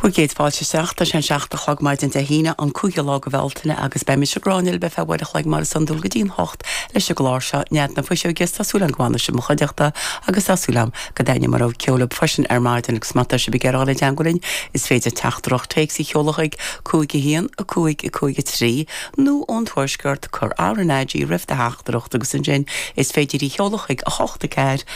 Bhur gcéad fáilte isteach. Tá sé an seacht a chlog maidin Dé hAoine, an cúigiú lá de Bhealtaine, agus beidh mise, Gráinne, libh go ceann uair an chloig mar is iondúil go dtí an hocht leis an gclár seo, Nead na Fuiseoige, is tá súil agam go bhfana sibh i mo chuideachta agus tá súil agam go dtaitneoidh mo rogha ceoil libh freisin ar maidin agus má tá sibh ag iarraidh dul i dteagmháil linn is féidir teachtaireacht téacs a sheoladh chuig 5 1 5 5 3 nó ón Tuaisceart cur RnaG roimh do theachtaireacht agus ansin is féidir í sheoladh chuig 8 4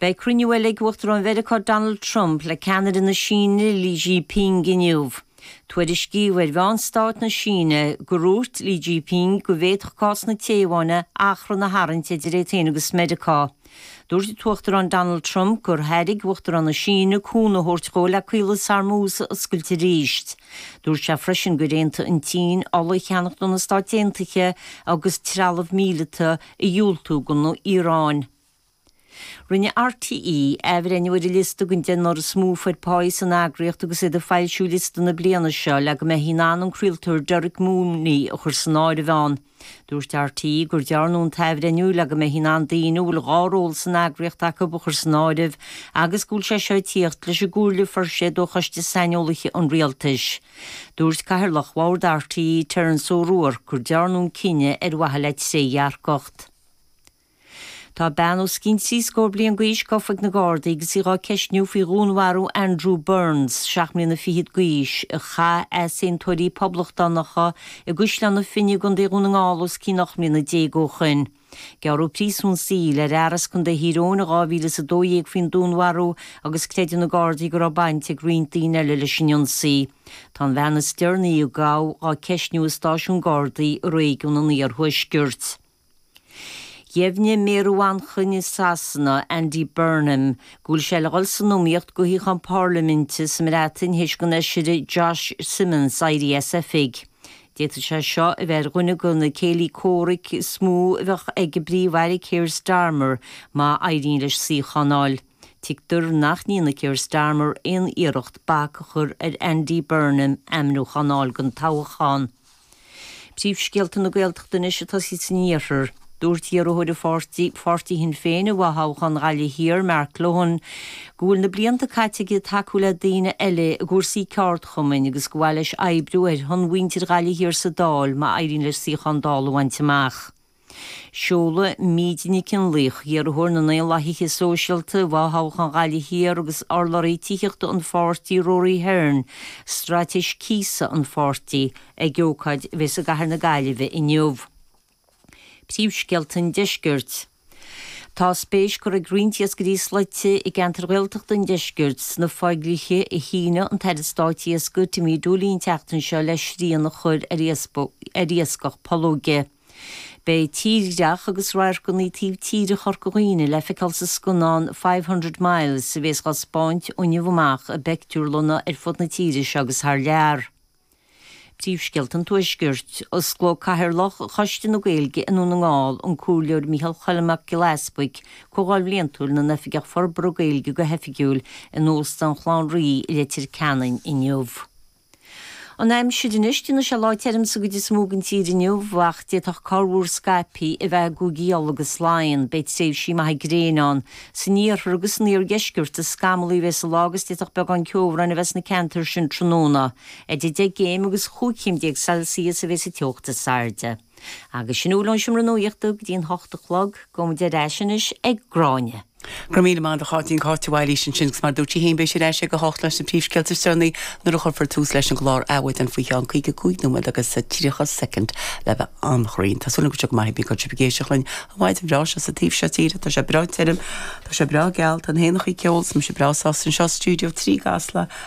Beidh cruinniú eile ag Uachtarán Mheiriceá Donald Trump le ceannaire na Síne Xi Jinping inniu. Tuairiscíodh ar mheáin stáit na Síne gur úirt Xi Jinping go bhféadfadh cás na Téaváine achrann a tharraingt idir é féin agus Meiriceá. Dúirt an tUachtarán Donald Trump gur thairg Uachtarán na Síne cúnamh a thabhairt dhó le Caolas Hormuz a oscailt arís. Dúirt sé freisin gur aontaigh an tSín ola a cheannacht ó na Stáit Aontaithe agus trealamh míleata a dhiúltú don Iaráin. Rinne RTÉ athbhreithniú ar an liosta den deichniúr is mó a fuair páí san eagraíocht agus iad ag foilsiú liosta na bliana seo le go mbeifí in ann an craoltóir Derek Mooney a chur san áireamh ann. Dúirt RTÉ gur dearnadh an t-athbhreithniú le go mbeifí in ann daoine a bhfuil dhá ról san eagraíocht acu a chur san áireamh agus go bhfuil sé seo ag tíocht leis an gcomhairle a fuair siad ó Choiste Saineolaithe an Rialtais. Dúirt Cathaoirleach Bhord RTÉ, Terence O'Rourke, gur dearnadh an cinneadh ar mhaithe le trédhearcacht. Tá bean os cionn trí scór bliain d'aois gofa ag na Gardaí agus í á ceistniú faoi dhúnmharú Andrew Burns, seacht mbliana fichead d'aois, a chaith easaontóirí poblachtánacha i gCaisleán na Finne i gContae Dhún na nGall os cionn ocht mbliana déag ó shin. Gearradh príosún saoil ar fhear as Contae Thír Eoghain in 2012 faoin dúnmharú agus creideann na Gardaí go raibh baint ag roinnt daoine eile leis an ionsaí. Tá an bhean is deireanaí a gabhadh á ceistniú i stáisiún Gardaí i réigiún an iarthuaiscirt. Dheimhnigh méara Mhanchain i Sasana, Andy Burnham, go bhfuil sé le dhul san iomaíocht do shuíochán Parlaiminte sa mBreatain théis don fheisire Josh Simons éirí as oifig. D'fhéadfadh sé seo a bheith ar dhuine go na céilí comhraic is mó a bheadh ag an bPríomh-Aire Keir Starmer má éiríonn leis suíochán fháil. Tuigtear nach ndéanfaidh Keir Starmer aon iarracht bac a chur ar Andy Burnham ainmniúchán fháil don toghchán. Príomhscéalta na Gaeltachta anois ag tosaí san iarthar. Dúirt iarrthóir an pháirtí, Pháirtí Shinn Féin, i bhfothoghchán Ghaillimh Thiar, Mark Lohan, go bhfuil na blianta caite aige ag tacú le daoine eile i gcúrsaí ceardchumainn agus go mba mhaith leis oibriú ar shon mhuintir Ghaillimh Thiar sa Dáil má éiríonn leis suíochán Dála a bhaint amach. Seolfaidh Míde Nic an Laoch, iarrthóir na nDaonlathaithe Sóisialta i bhfothoghchán Ghaillimh Thiar agus urlabhraí tithíochta an pháirtí Rory Hearne, straitéis cíosa an pháirtí, ag ócáid a bheas i gcathair na Gaillimhe inniu. Príomhscéalta an Deiscirt Tá spéis curtha ag roinnt iascairí slaite i gceantair Ghaeltachta an Deiscirt sna fodhlíthe a shínigh an tAire Stáit Iascaigh Timmy Dooley an tseachtain seo le srian a chur ar iascach pollóige. Beidh tírdhreach agus radharcanna taobh tíre Chorca Dhuibhne le feiceáil sa scannán Five Hundred Miles a bhéas á spáint ó inniu amach i bpeictiúrlanna ar fud na tíre seo agus thar lear. Príomhscéalta an Tuaiscirt. Osclóidh Cathaoirleach Choiste na Gaeilge i nDún na nGall, an Comhairleoir Micheál Choilm Mac Giolla Easbuig, Comhdháil Bhliantúil na nOifigeach Forbartha Gaeilge go hoifigiúil in Óstán Chlann Rí i Leitir Ceanainn inniu. An aimsir anois déanfaidh sé lá tirim sa gcuid is mó den tír inniu ach d'fhéadfadh corrmhúr scaipthe a bheith i gCúige Uladh agus Laighean. Beidh tréimhsí maithe gréine ann san iarthar agus san iardheisceart is scamallaí a bheas an lá agus d'fhéadfadh beagán ceobhráin a bheith sna ceantair sin tráthnóna. Idir 10 gcéim agus 15 céim Celsius a bheas an teocht is airde. Agus sin a bhfuil ón Seomra Nuachta go dtí an hocht a chlog, gabhfaidh muid ar ais anois ag Gráinne. Go raibh míle maith agat a Cháitín, Cáit de Bhailís ansin agus mar a dúirt sí féin beidh sí ar ais ag a hocht leis na príomhscéalta is deireanaí nuair a chuirfear tús leis an gclár Adhmhaidin faoi cheann caoga cúig nóiméad agus tríocha soicind le bheith an-chruinn. Tá súil agam go bhfuil sibh go maith pé bí cá bhfuil sibh ag éisteacht linn an mhaidin bhreá seo sa taobh seo tíre. Tá sé breá tirim. Tá sé breá geal. Tá na héanacha ag ceol. Tá mise breá sásta anseo i Studio 3 i gCasla.